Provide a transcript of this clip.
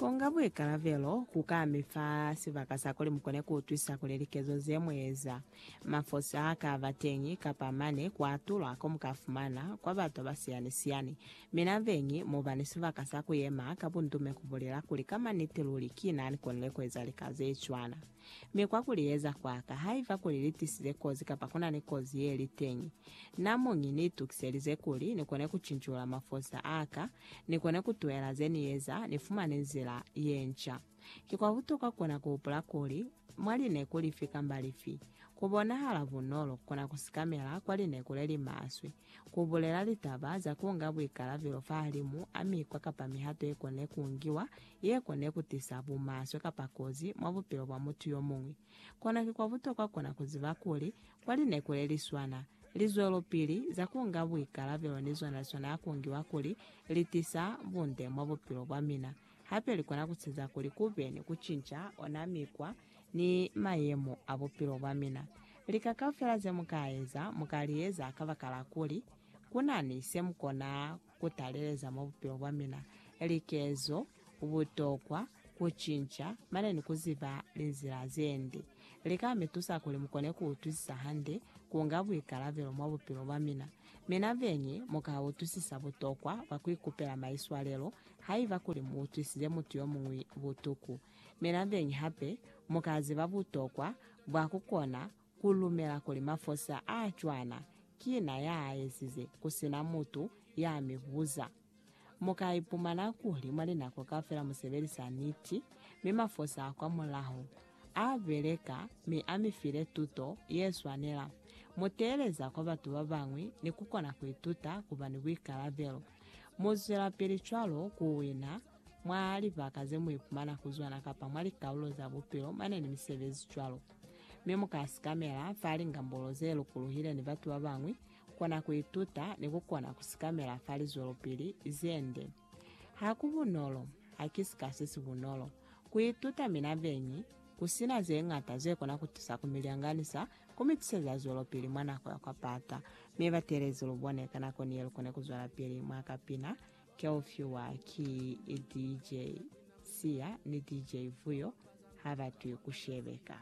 Konga buikalabelo ku ka mi fa sibaka sa kuli mu kone ku utwisa kuli likezo ze mu eza, mafosi a ka ba teñi, kapa mane ku atulwa ko mu ka fumana kwa batu ba siyani-siyani. Mi nabeñi, mu ba ni sibaka sa ku yema ka bundume ku bulela kuli ka maniti luli ki na ni konile ku eza lika ze cwana. Mi kwa kuliyeza kwaka, haiba kuli litisize kozi kapa kunani kozi yeli teñi, namuñi niitukiselize kuli nikone kucincula mafosa aka, nikone kutuhela zeniyeza, nifumane nzila yenca. Ki kwa butokwa kukona kuhupula kuli, mwa lineku lifi kamba lifi, kubonahala bunolo kukona kusikamela kwa lineku lelimaswe, ku bulela litaba za ku nga buikalabelo fahalimu a mikwa kapa mihato ye kone ku ngiwa ye kone ku tisa bumaswe kapa kozi mwa bupilo bwa mutu yo muñwi. Kono ki kwa butokwa kona ku ziba kuli, kwa lineku le li swana, lizwelopili za ku nga buikalabelo ni zona li swanela ku ngiwa kuli li tisa bunde mwa bupilo bwa mina. Hape li kona ku siza kuli ku be ni ku cinca ona mikwa ni mayemo a bupilo bwa mina. Lika kaufela ze mu ka eza, mu ka li eza kabakala kuli ku na ni se mu kona ku taleleza mwa bupilo bwa mina, likezo, butokwa, ku cinca, mane ni ku ziba linzila ze nde. Li ka mi tusa kuli mu kone ku utwisisa hande ku nga buikalabelo mwa bupilo bwa mina. Mina beñi mu ka utwisisa butokwa bwa ku ikupela maiswalelo Haiba kuli mu utwisize mutu yomuñwi butuku, mi nabeñi hape mu ka ziba butokwa bwa ku kona ku lumela kuli mafosi a a cwana ki na ya a ezize ku si na mutu ya mi buza. Mu ka ipumana kuli mwa linako kaufela mu sebelisa niti, mi mafosi a kwamulaho a beleka mi a mi file tuto ye swanela. Mu teeleza kwa batu ba bañwi ni ku kona ku ituta ku ba ni buikalabelo. Mu zwelapili cwalo ku wina mwa libaka ze mu ipumana ku zona kapa mwa likaulo za bupilo mane ni misebezi cwalo. Mi mu ka sikamela fa lingambolo ze lukuluhile ni batu ba bañwi, kona ku ituta, ni ku kona ku sikamela fa lizwelopili ze nde. Ha ku bunolo, ha ki sika se si bunolo, ku ituta mina beñi, ku sina ze ñata ze kona ku tusa ku mi lyanganisa Ku mi tiseza zwelopili mwa nako ya kwa pata, mi ba teelezi lu bone ka nako ni ye lu kone ku zwelapili mwa ka pina. Ke u fiwa ki DJ Siya ni DJ Vuyo ha ba twi ku shebeka.